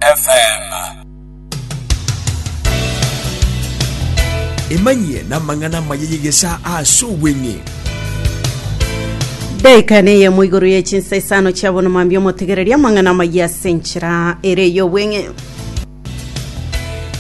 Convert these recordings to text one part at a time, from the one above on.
FM. Emanyie namang'ana amaya y'egesaa ase obweng'e. Daika neyemo igoro ye chinsa isano chia bono mambia omotegereria amang'ana amaya ase enchera ere y'obweng'e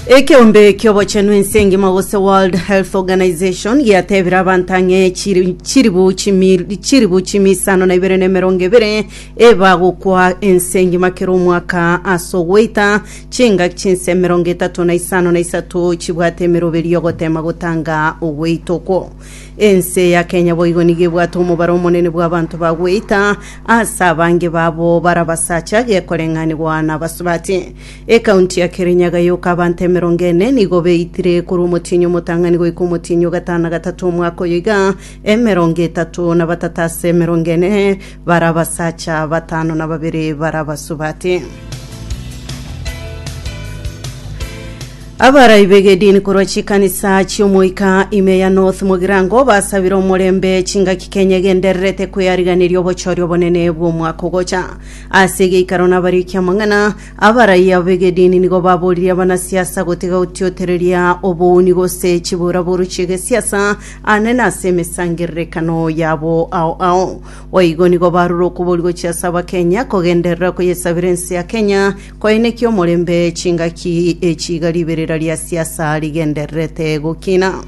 ekeombe kiobochenu ense engima gose world health organization giatebire abanto ang'e chiri- chiribu chimi- chiribu chimi isano na ibere na emerongo ebere Ebagokwa ense engima kera omwaka ase ogoita, chingaki chinse emerongo etato na isano na isato chibwate emeroberi y'ogotema gotanga ogoita okwo. Ense ya Kenya boigo nigo ebwate omobaro omonene bw'abanto ba goita, ase abange babo bare abasacha gekoreng'anigwa na abasubati. Ekaunti ya Kirinyaga yoka abanto emerongo ene nigo beitire korwa omotienyi omotang'ani goika omotienyi o gatano na gatato omwaka oyo iga, emerongo etato na batato ase emerongo ene Baria abasacha batano na babere baria abasubati. Abarai b'egedini korwa chikanisa chi'omoika ime ya North Mogirango basabire omorembe chingaki Kenya egendererete kweariganeria obochori obonene bw'omwaka ogocha. Ase egeikaro nabarikia amang'ana, abarai abo b'egedini nigo baboririe abanasiasa gotiga gotiotereria obouni gose chiboraboru chi'egesiasa Anene ase emesangererekano yabo ao ao. Boigo nigo barure okobori gochia ase Abakenya, kogenderera koyesabera ense ya Kenya, koenekia omorembe chingaki echi iga riberera ria siasa rigendererete gokina.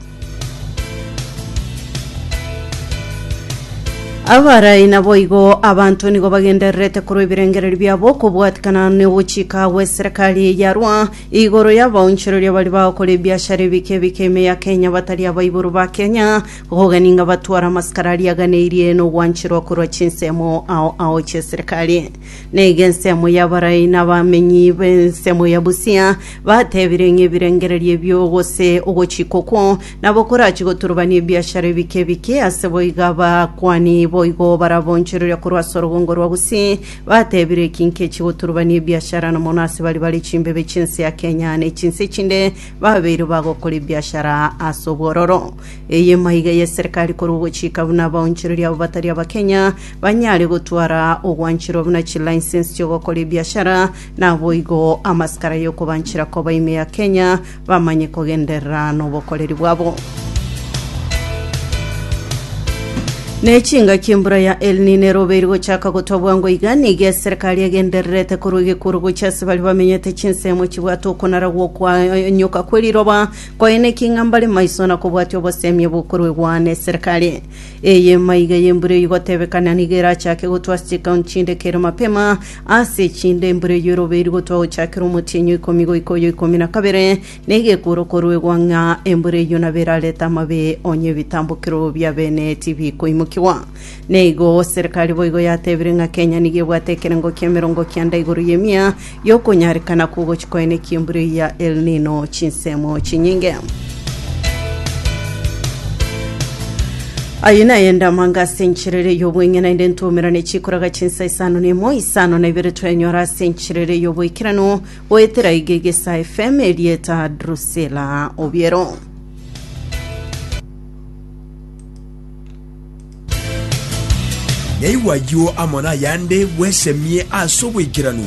Abarai naboigo abanto nigo bagendererete korwa ebirengererio biabo kobwatikana nogochika gweserekari yarwa Igoro y'abaonchoreria baria bagokora ebiashara ebike ebike ime ya Kenya batari abaibori ba Kenya, kogogania ngabatware amasikara aria aganeirie nogwancherwa korwa chinsemo ao ao chi'eserekari. Na iga ensemo y'abarai na abamenyi b'ensemo ya Busia batebire ng'a ebirengererio ebio gose ogochika okwo nabo korachie goturubania ebiashara ebike ebike, aseboiga abakuani boigo barabaonchoreria korwa as'orogongo rwa Gusii Batebire eki nkechi goturubania ebiashara na mono ase bari bare chimbebe chi'ense ya Kenya ne chinse echinde babeire bagokora ebiashara ase obwororo. Eye maiga y'eserekari korwa ogochika buna abaonchoreria abo batari Abakenya banyare gotwara ogwancherwa buna chilicense chi'ogokora ebiashara, naboigo amasikara y'okobanchera koba ime ya Kenya bamanye kogenderera nobokoreri bwabo. Ne chingaki embura ya El Nino erobe eri gochaka gotwa bwango iga, nigo eserekari egendererete korwa egekuro gochia ase baria bamenyete chinsemo chibwate okonara gw'okoanyoka kwe riroba, koyena eking'a mbare maiso na kobwatia obosemie bokoruegwa n'eserekari. Eye emaiga y'embura eyio igotebekana nigo erachake gotwa ase chikaunti chinde kere mapema, Ase chindemburu eyio erobe rigotwa gochakera omotienyi o ikomi goika oyo ikomi na kabere, na egekuuro koruegwa ng'a embura eyio nabo erarete amabe, onye ebitambokero bia bene tibikoimokigwa. Na igo serikali boigo yatebirie ng'a Kenya nigo ebwate ekerengo ki'emerongo kianda igoro y'emia y'okonyarekana kw'ogochia kwaene ki'embura eyio ya El Nino chinsemo chinyinge. Aye naye ndamanga ase enchiriri y'obweng'e naende ntwomerane chikoraga chinsa isano na emo, isano na ibere twenyora ase enchiriri y'oboikeranu goetera iga egesa FM erieta Drusilla Obiero. Naigwe ayio amo nayande bwesemie ase oboikeranu.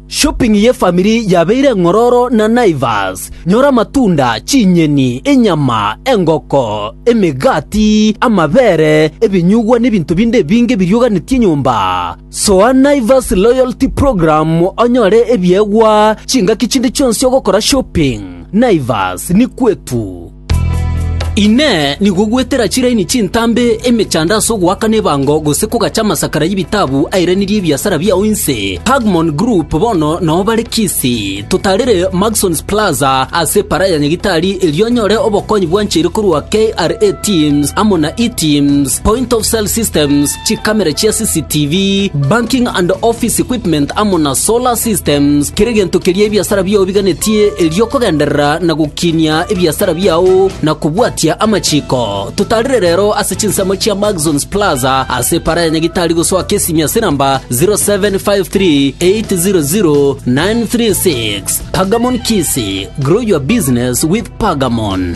Shopping ye family yabeire eng'ororo na Naivas. Nyora amatunda, chinyeni, enyama, engoko, emegati, amabere, ebinyugwa na ebinto binde ebinge birioganetie enyomba. Soa Naivas Loyalty Program onyore ebiegwa chingaki chinde chionsi ogokora shopping. Naivas ni kwetu. Inee! Nigo gwetera chiraini chintambe emechando ase ogoakana ebango gose kogacha amasakara y'ebitabu airanirie ebiasara biao inse? Pagmon Group bono nao bare Kisii. Totarire Maxons Plaza ase Para ya Nyagitari erio onyore obokonyi bwancheire korwa KRA Teams amo na E-Teams, Point of Sale Systems, chikamera chia CCTV, banking and office equipment amo na solar systems, kera egento keria ebiasara biao biganetie erio okogenderera na gokinia ebiasara biao na kobwatia amachiko. Totarire rero ase chinsemo chia Maxons Plaza ase epara ya Nyagitari gosoa Kesimi ase namba 0753800936. Pagamon Kisi, grow your business with Pagamon.